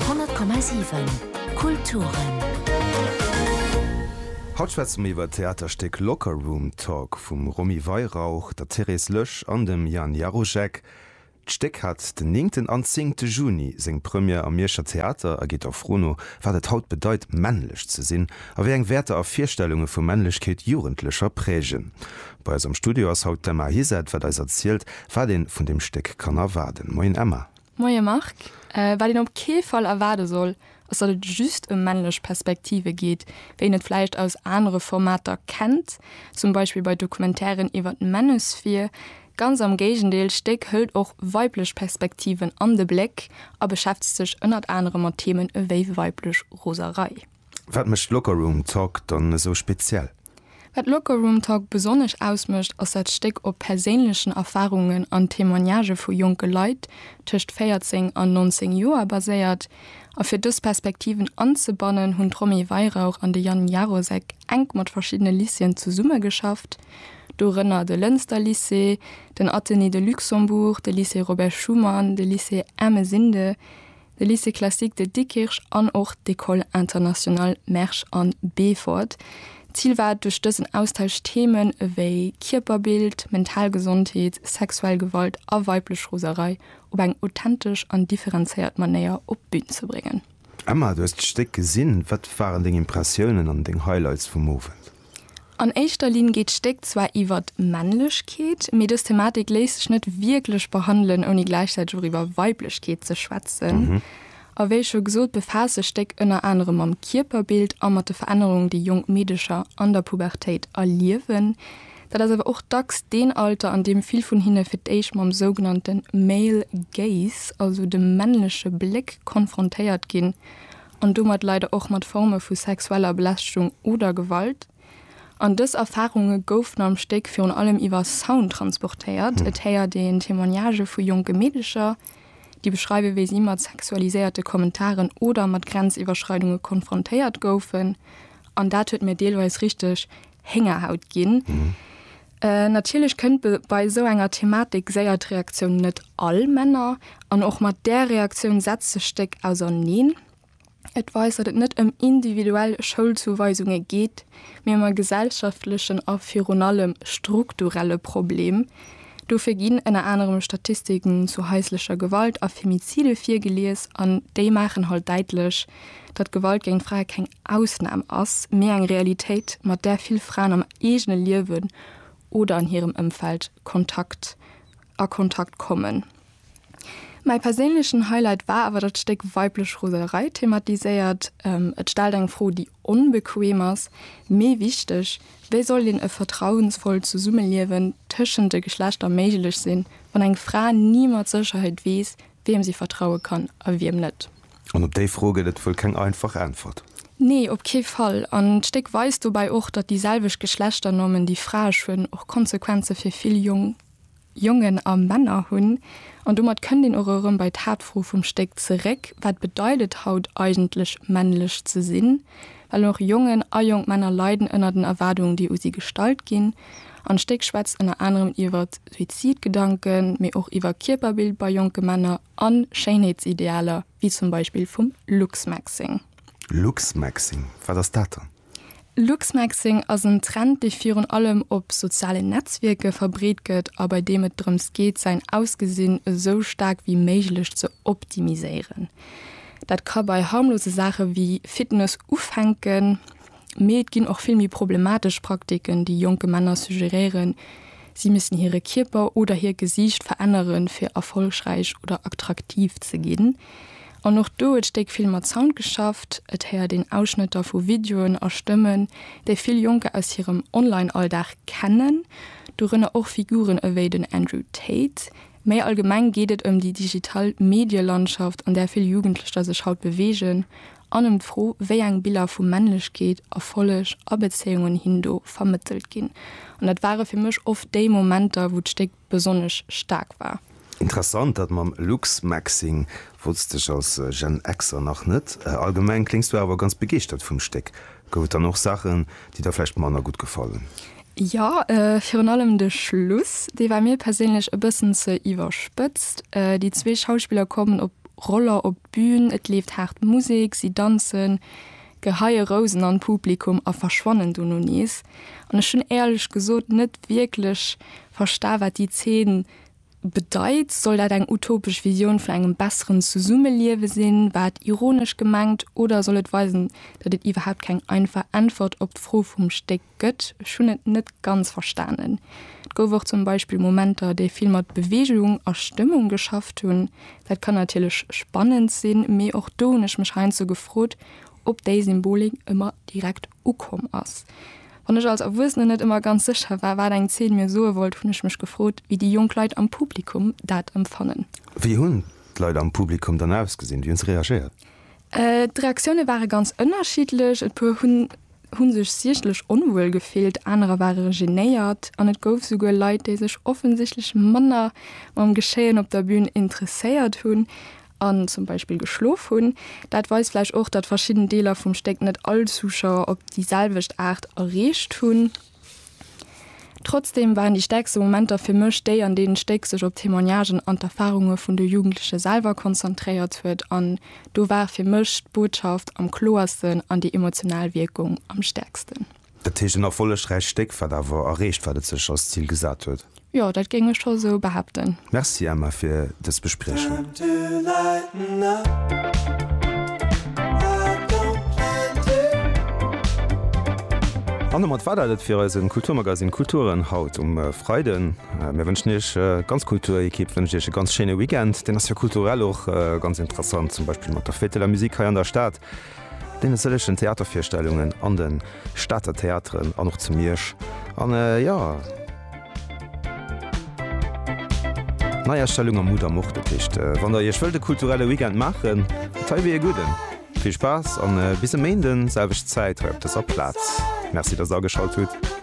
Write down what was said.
100,7 Kulturen. Haut schwätze mir iwwer d'Theaterstéck Locker Room Talk vum Romy Weihrauch, der Therese Loesch an dem Jan Jaruschek. D'Stéck hat den néngten an zéngte Juni seng Première am Mierscher Theater a geet der Fro no, wat et haut bedeit, männlech ze sinn a wéi eng Wäerter a Virstellunge vu Männlechkeet Jugendlecher prägen. Bei eis am Studio ass haut d'Emma Hiset, wat eis erzielt, wat een vun deem Stéck kann erwaarden. Moien Emma. Moie Marc, wat een op kee Fall erwaarde soll, ass datt et just ëm männlech Perspektive geet, wéi een et vläicht aus anere Formater kennt, zum Beispill bei Documentairen iwwer d'Manosphere. Ganz am Géigendeel, d'Stéck hëlt och weiblech Perspektiven an de Bléck a beschäftegt sech ënnert anerem mat Themen ewéi weiblech Roserei. Wat mécht Locker Room Talk dann esou speziell? Wat Locker Room Talk besonnesch ausmécht, ass dat Stéck op perséinlechen Erfarungen an Témoignagë vu jonke Leit tëscht 14 an 19 Joer baséiert. A fir dës Perspektiven anzebannen, hunn d'Romy Weihrauch an de Yann Jarosek enk mat verschiddene Lycéeën zesummegeschafft, dorënner de Lënster Lycée, den Athenée de Luxembourg, de Lycée Robert Schuman, de Lycée Ermesinde, De Lycée Classique de Dikkirch an och d'École Internationale Mersch an Beefort. D'Zil war et duerch dësen Austausch Themen ewéi Kierperbild, mental Gesondheet, sexuell Gewalt a weiblech Roserei op eng authentesch an differenzéiert Manéier op d'Bün ze bréngen. Emma, du hues d'Stéck gesinn, wat waren deng Impressiounen an deng Highlights vum Owend? An éischter Linn geet d'Stéck zwar iwwer d'Männlechkeet, mee dës Thematik léisst sech net wierklech behandelen, ouni gläichzäiteg och iwwer Weiblechkeet ze schwätzen. A wéi scho gesot, befaasst sech d'Stéck ënner anerem mam Kierperbild a mat de Verännerungen, déi jonk Meedecher an der Pubertéit erliewen. Dat ass awer och dacks deen Alter, an deem vill vun hinne fir d'éischt mam sougenannte male gaze, also dem männleche Bléck, konfrontéiert ginn an domat leider och mat Forme vu sexueller Belästegung oder Gewalt. An dës Erfarunge goufen am Stéck virun allem iwwer Sound transportéiert. Et héiert een Témoignagë vu jonke Meedecher, déi beschreiwen, wéi si mat sexualiséierte Kommentaren oder mat Grenziwwerschreidunge konfrontéiert goufen. An dat huet mir deelweis richteg Héngerhaut ginn. Äh, natierlech kënnt be bei esou enger Thematik séier d'Reaktioun net all Männer, an och mat där Reaktioun setzt sech d'Stéck auserneen. Et weist, datt et net ëm individuell Schoulzuweisunge geet, mee ëm e gesellschaftlechen a virun allem strukturelle Problem. Dofir ginn ënner anerem Statistiken zu haislecher Gewalt a Femizide virgelies, an déi maachen halt däitlech, datt Gewalt géint Frae keng Ausnam ass, mee eng Realitéit, mat där vill Fraen am eegene Liewen oder an hirem Ëmfeld Kontakt a Kontakt kommen. Mäi perséinlechen Highlight war awer dat Stéck Weiblech Roselerei thematiséiert. Et stellt eng Fro, déi onbequeem ass, mee wichteg, Wéi soll een e vertrauensvollt Zesummeliewen tëschent de Geschlechter méiglech sinn, wann eng Fra ni mat Sécherheet weess, Wiem si vertraue kann a wiem net. An op déi Fro gëtt et wuel keng einfach Äntwert. Nee, op kee Fall. An d'Stéck weist dobäi och, datt déi selwecht Geschlechternormen, déi Fraesch hunn, och Konsequenze fir vill jonk Jongen a Männer hunn. An domat kënnt een och erëm bei d'Haaptfro vum Stéck zeréck, Wat bedeit et haut eigentlech männlech ze sinn? Well och Jongen a jonk Männer leiden ënner den Erwaardungen, déi u si gestallt ginn. An d'Stéck schwätzt ënner anerem iwwer Suizidgedanken, mee och iwwer Kierperbild bei jonke Männer a Schéinheetsidealer, wéi zum Beispill vum Luxmaxxing. Luxmaxxing, wat ass dat dann? Luxmaxxing ass en Trend, dee virun allem op sozialen Netzwierke verbreet gëtt a bei deem et drëms geet, säin Ausgesinn esou staark wéi méiglech ze optimiséieren. Dat ka bei harmlose Saache wéi Fitness ufänken, mee et ginn och vill méi problematesch Praktiken, déi jonke Männer suggeréieren, si missten hire Kierper oder hiert Gesiicht veränneren, fir erfollegräich oder attraktiv ze ginn. An och do huet d'Stéck vill mat Sound geschafft. Et héiert een Ausschnëtter vu Videoen a Stëmmen, déi vill Jonker aus hirem Online-Alldag kennen, dorënner och Figuren ewéi den Andrew Tate. Méi allgemeng geet et ëm déi digital Medielandschaft, an där vill Jugendlecher sech haut beweegen, an ëm d'Fro, wéi eng Biller vu Männlechkeet, Erfolleg a Bezéiungen hin do vermëttelt ginn. An dat ware fir mech oft déi Momenter, wou d'Stéck besonnesch staark war. Interessant, dat mam Luxmaxxing wollts dech als Gen Xer nach net. Allgemeng kléngs du awer ganz begeeschtert vum Stéck. Gouf et dann och Saachen, déi der vläicht manner gutt gefallen? Jo, virun allem de Schluss, dee war mir perséinlech e bëssen ze iwwerspëtzt. Déi zwee Schauspiller kommen op Roller op d'Bün, et leeft haart Musek, si danzen, geheie Rousen an d'Publikum a verschwannen dono nees. An ech hunn éierlech gesot net wierklech versta wat déi Zeen bedeit. Soll dat eng utopesch Visioun vun engem besseren Zesummeliewe sinn? War et ironesch gemengt oder soll et weisen, datt et iwwerhaapt keng einfach Äntwert op d'Fro vum Stéck gëtt. Ech hunn et net ganz verstanen. Et gouf och zum Beispill Momenter, déi vill mat Beweegung a Stëmmung geschafft hunn. Dat kann natierlech spannend sinn, mee och do hunn ech mech heiansdo gefrot, ob déi Symbolik ëmmer direkt ukomm ass. Wann ech als Erwuessenen net ëmmer ganz sécher war, wat eng Zeen mir soe wollt, hunn ech mech gefrot, wéi déi jonk Leit am Publikum dat empfannen. Wéi hunn d'Leit am Publikum dann ausgesinn? Wéi hunn se reagéiert? D'Reaktioune ware ganz ënnerschiddlech, e puer hu sech siechtlech onwuel gefillt, anerer ware genéiert an et gouf esouguer Leit, déi sech offensichtlech manner mam Geschéien op der Bün interesséiert hunn an zum Beispill geschlof hunn. Dat weist vläicht och, datt verschidden Deeler vum Stéck net all Zuschauer op déi selwecht Aart erreecht hunn. Trotzdem waren déi stäerkste Momenter fir mech déi, an deenen d'Stéck sech op d'Témoignagen an d'Erfarunge vun de Jugendleche selwer konzentréiert huet. An do war fir mech d'Botschaft am kloersten an déi emotional Wierkung am stäerksten. Dat heescht, en erfollegräicht Stéck, wat awer erreecht, wat et sech als Zil gesat huet. Jo, dat géing ech scho sou behaapten. Merci Emma fir dës Bespriechung. An domat war dat et fir eisen Kulturmagazin Kulturen haut um Freiden. Mir wënschen Iech, d'ganz Kulturekipp wënscht Iech e ganz schéine Weekend. Deen ass jo kulturell och ganz interessant, zum Beispill mat der Fête de la Musique hei an der Stad. Deene sëllegen Theatervirstellungen an de Stater Theateren an och zu Miersch an jo. Neiastellung am Mudam och. Dat heescht, wann der Iech wëllt e kulturelle Weekend maachen, dat hei wier ee gudden. Vill Spaass an bis e Méinden, selwecht Zäit hei op dëser Plaz. Merci, dass der ageschalt hutt.